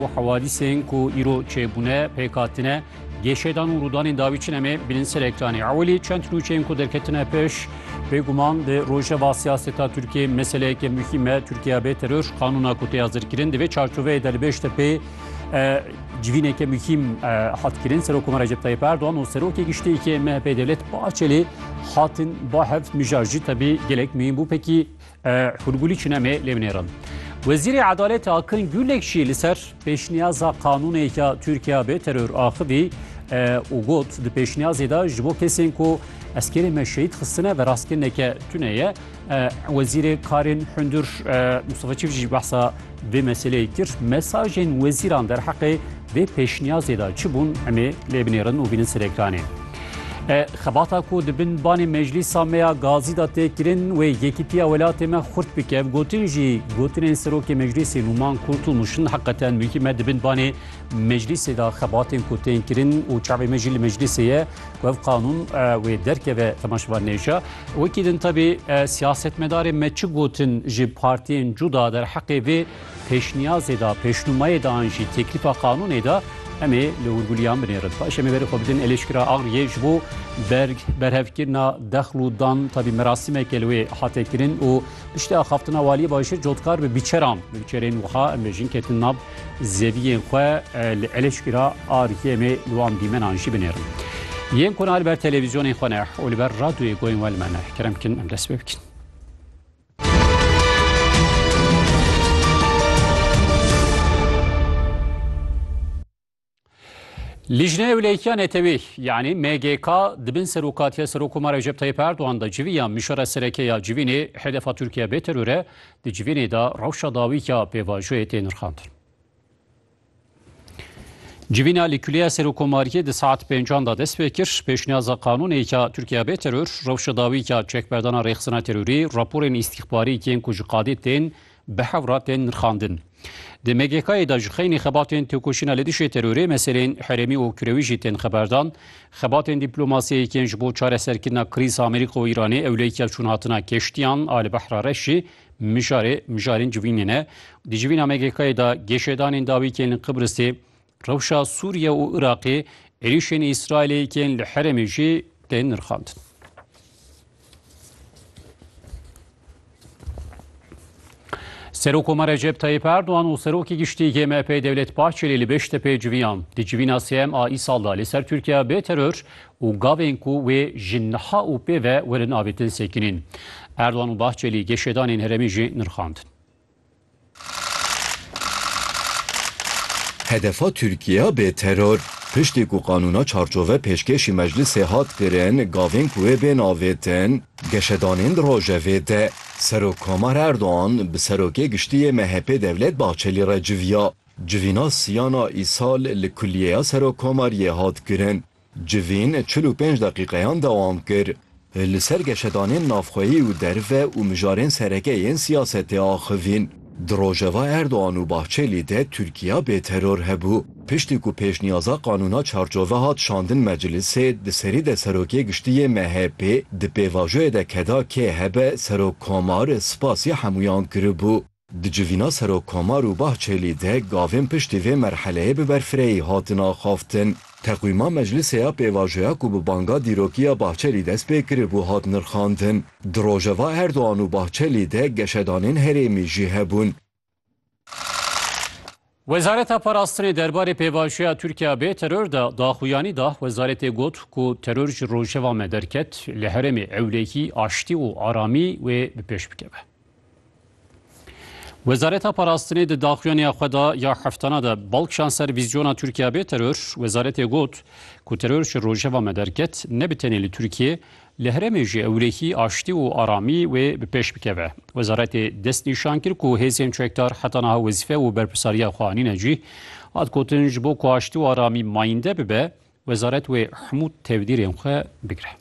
Û hewadîsên ku îro çêbûne, pêk hatine, gêşedan û rûdanên dawî çi ne mê bînin ser ekranê. Ewilî çend nûçeyên ku derketine pêş, bêguman di rojeva siyaseta Tirkiyê meseleyeke muhîm e, Tirkiya bê teror, qanûna ku tê hazirkirin divê çarçoveyê de li Bêştepê civîneke muhîm hat kirin. Serokoma Recep Tayyip Erdogan û Serokê Giştî yê MHP'ê Devlet Bahçelî hatin ba hev mijar jî tevî gelek muhîm bû. Pekî Hûrgulî çûne me lê binêrin. Wezîrê Edaletê Akin Gulek jî li ser pêşniyaza qanûnêka Tirkiya bê teror axivî û got di pêşniyazê de ji bo kesên ku eskerê me şehîd xistine ve rastkirineke tune ye. Wezîrê karên hundir Mustafa Çiv jî behsa Vê meseleyê kir mesajên wezîran derheqê vê pêşniyazê de çi bûn em ê lê binêrin û bînin ser ekranê. Xebata ku di bin banê meclîsa me ya gazî de tê kirin wê yekîtiya welatê me xurt bike. Gotin jî gotinên serokê meclîsê Nûman Kurtulmûş hin heqeten muhîm e di bin banê Meclîsê de xebatên ku tên kirin û çavê me jî li meclîsê ye ku ev qanûn wê derkeve temaşevan nêşa. Wekî din tevî siyasetmedarên me çi gotin ji partiyên cuda derheqê vê pêşniyazê de, pêşnûmayê de an jî têklîfa qanûnê de em ê li hûrgulîyan binêrin. Paş em ê berê xwe bidin Elêşkira Agryê ji bo berg berhevkirina dexl û dan tevî merasîmeke li wê hate kirin û piştî axaftina waliyê bajêr cotkar bi bîçeran bi bîçerên wiha em bêjin ketin nav Zeviyên xwe li Eleşkîra RYM'ê li wan dîmenan jî binêrin. Yên ku ne li ber televîzyonên xwe ne û li ber radyoyê goyên we li me ne, kerem bikin em dest pê bikin. Lijne Ewleykiya Netewî yanî MGK di bin serokatiya Serokkomar Recep Tayyip Erdogan de civî ya Mişora Sereke ya Civînê Hedefa Tirkiye bê teror e di civînê de rewşa dawîka pêvajoyê tê nirxandin. Civîna li Kuleya Serokkomariyê di saet pêncan de dest pê kir pêşniyaza qanûnêka Tirkiye bê teror rewşa dawîka çekberdana rêxistina terorî raporên îstîxbarî yên ku ji qadê tên Bi hewra tên nirxandin. Di MGK'ê de ji xeynî xebatên têkoşîna li dijî terorê, meselên herêmî û kirewî jî tên xeberdan. Xebatên dîplomasiyê yên ji bo çareserkirina krîza Amerîka û Îranê ewleyîka çûnhatina keştiyan a li Behra Reş jî mijarê mijarên civînê ne. Di civîna MGK'ê de geşedanên dawî yên li Qibrisê, Rewşa Sûriye û Iraqê êrişên Îsraîlê yên li herêmê jî tên nirxandin. Serokoma Recep Tayyip Erdoğan û Serokê Giştî yê MHP'ê Devlet Bahçelî li Beştepê civiyan. Di civîna sêyem a îsal da li ser Tirkiye bê teror û gavên ku wê ji niha û pê ve werin avêtin sekinîn. Erdoğan û Bahçelî geşedanên herêmê jî nirxandin. Hedefa Tirkiye bê teror. Piştî ku qanûna çarçove pêşkêşî meclisê hat kirin, gavên ku wê bên avêtin, geşedanên di rojevê de. Serokkomar Erdogan bi serokê giştî yê MHP'ê Devlet Bahçelî re civiya. Civîna siyana îsal li kulîyeya serokkomariyê hat kirin. Civîn çil û pênc deqîqeyan dewam kir. Li ser geşedanên navxweyî û derve û mijarên sereke yên siyasetê axivîn. Di rojeva Erdogan û Bahçelî de Tirkiya bê teror hebû. Piştî ku pêşniyaza qanûna çarçove hat şandin meclisê, di serî de Serokê Giştî yê MHPê di pêvajoyê de keda kê hebe Serok Komar spasî hemûyan kiribû. Di civîna Serokkomar û Bahçelî de gavên piştî vê merheleyê bi berfirehî hatin axaftin. Teqwîma meclisê ya pêvajoya ku bi banga dîrokî ya Bahçelî dest pê kiribû hat nirxandin. Di rojeva Erdogan û Bahçelî de geşedanên herêmî jî hebûn. Wezareta Parastinê derbarê pêvajoya Tirkiya bê teror de daxuyanî da. Wezaretê got ku teror ji rojeva me derket, li herêmê ewlehî aştî û aramî wê bi pêş bikeve. Wezareta Parastinê di daxuyaniya xwe de ya heftana de bal kişan ser vîzyona Tirkiya bê teror. Wezaretê got ku teror ji rojeva me derket ne bi tenê li Tirkiye Li herêmê ji ewlehî aştî û aramî wê bi pêş bikeve. Wezaretê dest nîşan kir ku hêzên çekdar heta niha wezîfe û berpirsariya xwe anîne cîh. Hat gotin ji bo ku aştî û aramî mayînde bibe, wezaret wê hemû tevdîrên xwe bigire.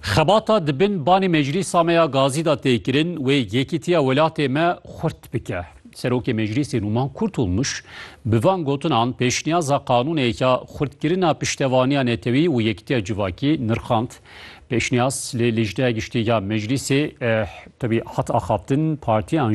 Xebata di bin banê Meclîsa me ya Gazî de tê kirin wê yekîtiya welatê me xurt bike. Serokê Meclîsê Nûman Kurtulmuş bi van gotinan pêşniyaza qanûnêk ya xurtkirina piştevaniya netewî û yekîtiya civakî nirxand. Pêşniyaz li Lijneya Giştî ya Meclîsê tevî hat axaftin, partiyan